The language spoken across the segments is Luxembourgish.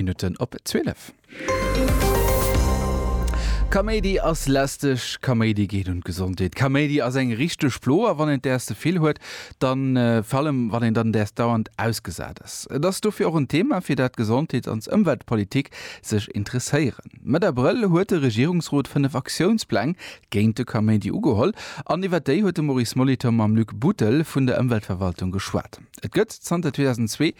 Minutten op 12. Kaméidi ass lästeg, Kaméidi geet un d'Gesondheet, Kaméidi ass eng richteg Plo a wann een däers ze vill huet, dann vir allem wann een dann däers dauernd ausgesat ass. Et ass dofir och en Thema fir dat d'Gesondheets an d'Ëmweltpolitik sech interesséieren. Mëtt Abrëll huet de Regierungsrot 5 Aktiounspläng géint de Kaméidi ugeholl an iwwer déi huet de Maurice Molitor mam Luc Buttel vun der Ëmweltverwaltung geschwat. Et gëtt zanter 2002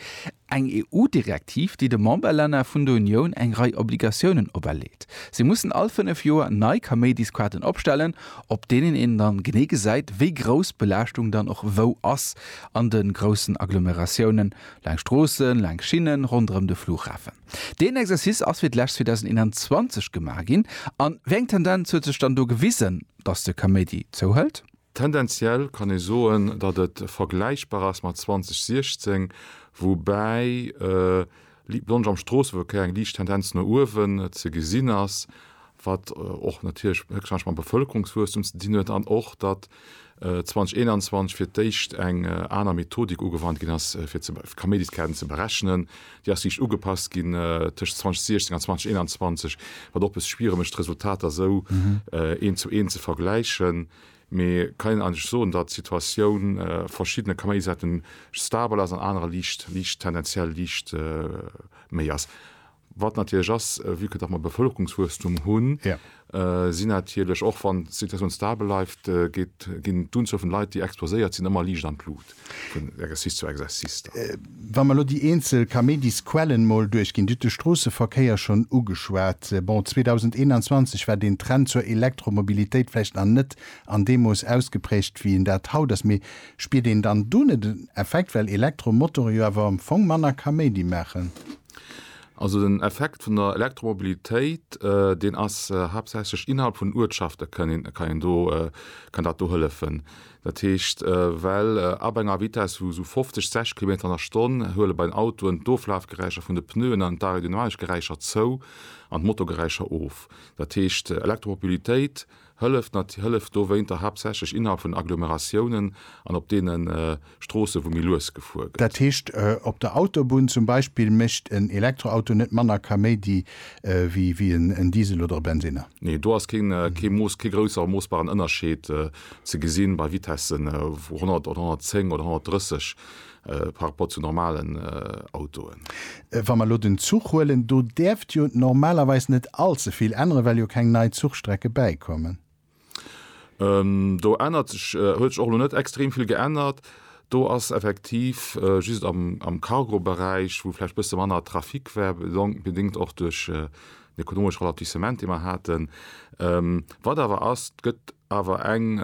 Eng EU-Direktiv, déi de Memberlänner vun der Unioun eng Rei Obligatiounen operleet. Si mussen all fënnef Joer nei Kaméidisquaten opstellen, op deenen een dann genee gesäit, wéi grouss d'Belaaschtung dann och wou ass an de groussen Agglomeratiounen, laang Stroossen, laang Schinnen, ronderëm de Flughafen. Deen Exercice ass fir d'lescht 2021 gemaach ginn. A wéi eng Tendenz huet sech dann do gewisen, dass de Kaméidi zouhëlt? Tendenziell kann ee soen, datt et vergläichbar ass mat 2016, woubäi d'Plongë am Stroosseverkéier eng liicht Tendenz no uewen ze gesinn ass, wat och natierlech héchstwahrscheinlech mam Bevëlkerungswuesstum ze dinn huet an och, datt 2021 fir d'éischt eng aner Methodik ugewannt ginn ass, fir d'Kaméidiskäerten ze berechnen, Déi ass riicht ugepasst ginn tëscht 2016 an 2021, wat och e bësse schwiereg mécht, d'Resultater esou eent zu eent ze vergläichen. Mee kann een eigentlech soen, datt d'Situatioun a verschiddene Kaméidi-Säite stabel ass, an anerer liicht, liicht, tendenziell liicht méi ass. Wat natierlech ass, vue que datt mer e Bevëlkerungswuesstum hunn, si natierlech, och wann d'Situatioun stabel bleift, geet ginn d'Unzuel vun Leit, déi exposéiert sinn, ëmmer liicht an d'Lut vun Exercice zu Exercice da. Wa mer elo déi eenzel Kaméidisquellen mol duerchginn, Dir hutt de Stroosseverkéier schonn ugeschwat. Bon, 2021 war deen Trend zur Elektromobilitéit vläicht nach net an deem Mooss ausgeprägt, wéi en dat haut ass. Mee spiert een dann do net en Effekt, well Elektromotorë jo awer am Fong manner Kaméidi maachen? Also den Effekt vun der Elektromobilitéit, deen ass haaptsächlech innerhalb vun Uertschafte kann een, kann een do, kann dat do hëllefen. Dat heescht, well ab enger Vitesse vu sou 50, 60 Kilometer an der Stonn huele bei den Autoen d'Oflafgeräischer vun de Pneuen an d'Aerodynamikgeräischer zou an d'Motorgeräischer of. Dat heescht, Elektromobilitéit Hëllef, nat, Hëllef dowéinter haaptsächlech innerhalb vun Agglomeratiounen an op deene Stroosse wou méi lues gefuer gëtt. Dat heescht op der Autobunn zum Beispill mécht en Elektroauto net manner Kaméidi wéi en Diesel oder e Bensinner? Nee, do ass keen Mooss, kee grousser moossbaren Ënnerscheed ze gesinn bei Vitessen vu 100 oder 110 oder 130 par rapport zu normalen Autoen. Wa mer elo den Zuch huelen, do däerft jo normalerweis net allze vill änneren, well jo keng nei Zuchstrecke bäikommen. Do ännert sech, huet sech och elo net extrem vill geännert. Do ass effektiv just am Cargoberäich, wou vläicht e bësse manner Trafic war, bedéngt och duerch den ekonomesche Ralentissement, dee mer haten. Wat awer ass, et gëtt awer eng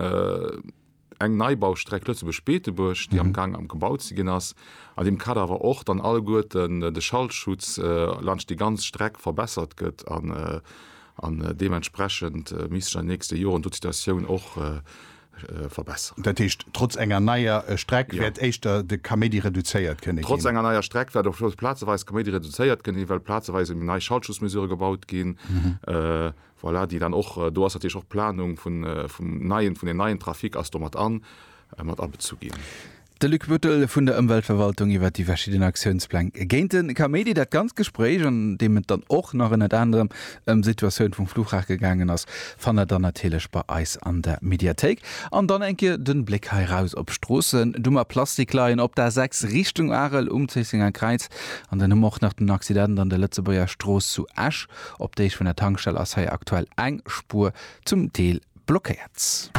eng Neibaustreck Lëtzebuerg-Beetebuerg, déi am Gaang am gebaut ze ginn ass, an deem Kader awer och dann alleguerten de Schallschutz laanscht déi ganz Streck verbessert gëtt an deementsprechend misst sech an den nächste Joren do d'Situatioun och verbessern. Dat heescht, trotz enger neier Streck wäert éischter de Kaméidi reduzéiert kënne ginn? Trotz enger neier Streck wäert och plazeweis de Kaméidi reduzéiert kënne ginn, well plazeweis eben nei Schallschutzmesurë gebaut ginn. Voilà, déi dann och do ass, natierlech och d'Planung vun, vum neien, vun den neien Trafic ass do mat an, mat abezu ginn. De Luc Buttel vun der Ëmweltverwaltung iwwert déi verschidden Aktiounspläng géint de Kaméidi. Dat ganzt Gespréich, an deem et dann och nach ënnert anerem ëm d'Situatioun vum Fluchhafe gegaangen ass, fannt der dann natierlech bei eis an der Mediathéik. An dann eng Kéier de Bléck hei raus op d'Stroossen, du mat Plastikleien op der 6 Richtung Arel um Zéissenger Kräiz. An dann hu mer och nach den Accident an der Lëtzebuerger Strooss zu Esch. Op Deeg vun der Tankstell ass hei aktuell eng Spuer zum Deel blockéiert.